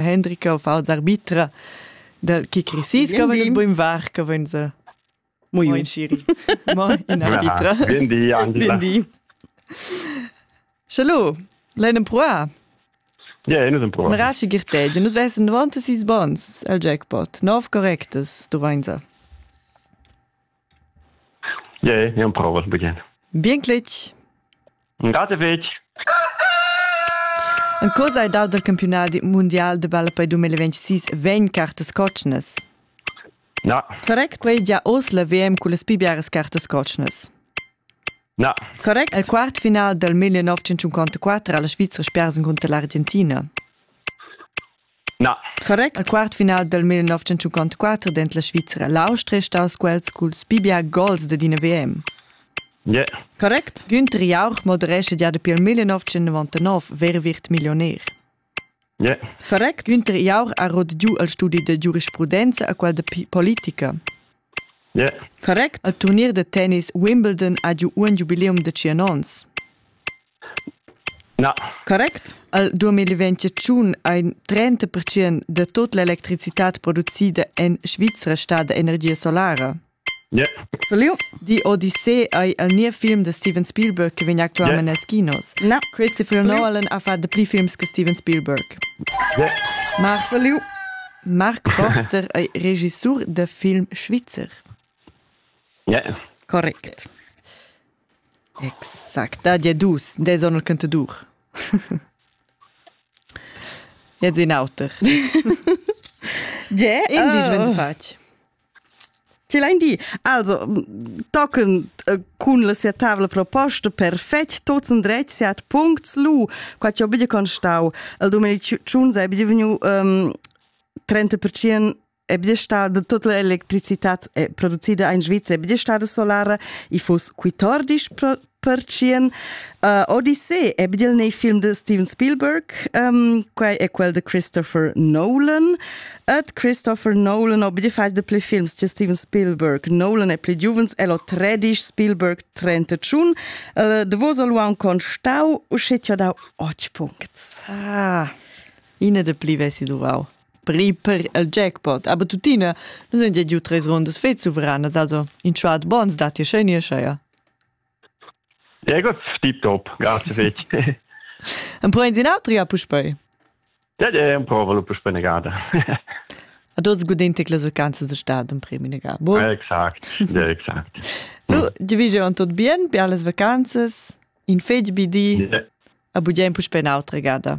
Hendrika auf als arbitra dal chi crisis che vegn buin var che vegn se Muy Moin Shiri. Moin in arbitra. Bien di Angela. Bien di. Hallo, Leinen Proa. Ja, ino sem prova. Mrashi girtej, nus vessen 96 bons al jackpot. 9 correctes, du vainsa. Ie, ja prova begjin. Bien cletg. Grate fetg. En cosa hai dau dal campiunal mundial de balla per 2026 vegn cartas cotschnas? Na. Correct. Quei gia oz la VM con las pibiaras cartas cotschnas. Na. Correct. El quart final dal 1954 ha la Svizra spersen contra l'Argentina. Na. Correct. Al quart final dal 1954 dent la Svizra l'Austria è staus quels culs bibia gols dad ina VM. Yeah. Correct. Günther Jauch moderescha gia dapi il 1999 Verwirt Millionär. Yeah. Correct. Günther Jauch ha rot giu al studi da giurisprudenza a quel da politica. Yeah. Correct. Al turnier da tennis Wimbledon ha giu un giubileum da tschien onns. Na. Correct. Al 2021 ha in 30 percent da tut l'electricitad producida en Svizra stada energia solara. Yeah. Verliu? Die Odyssee ei el niev film de Steven Spielberg che vegn actualment yeah. als kinos. No. Christopher Nolan ha fatto pli films che Steven Spielberg. Yeah. Mark Verliu. Mark Forster è regissor del film Schweizer. Yeah. Correct. Exact, dad ja dus, des on il cantadur. Jetzt in auter. Ge? In disch, wenn fatg. Ce l'hai di? Also, tochen äh, cun la sia tavla proposta perfect tots in dretg sia at puncts lu, qua ci ho bidi constau, il domenic 1 sei bidi vegnu um, 30% è bia stada tutta l'electricitad è producida in Svizzera, è bia stada solara, i foss 14 percien. Uh, Odyssey è bia nei film de Steven Spielberg, um, quai è quel de Christopher Nolan. Et Christopher Nolan ho bia fatg de pli films che Steven Spielberg. Nolan è pli giuvens, el ho 13, Spielberg 31. Uh, de vos lu un constau, usce ti ho dau 8 punct. Ah, ine de pli vesi duvau. per ir per il jackpot. Aber tuttina, nus haben già giù tres rundas fets suveranas, also in schwat bons da ti schön ja. Ja gut, tipptopp, grazie fetg. Empruein sin altri a puspei? Ja, ja, emprovalo puspei eine Garde. Ad oz gudintic las vacanzas de stad un premi negà. Bon? Exakt, ja, exakt. Nu, di vige on tot bien, per las vacanzas, in fetg bidi, yeah. a bugia in puspei un'altra gada.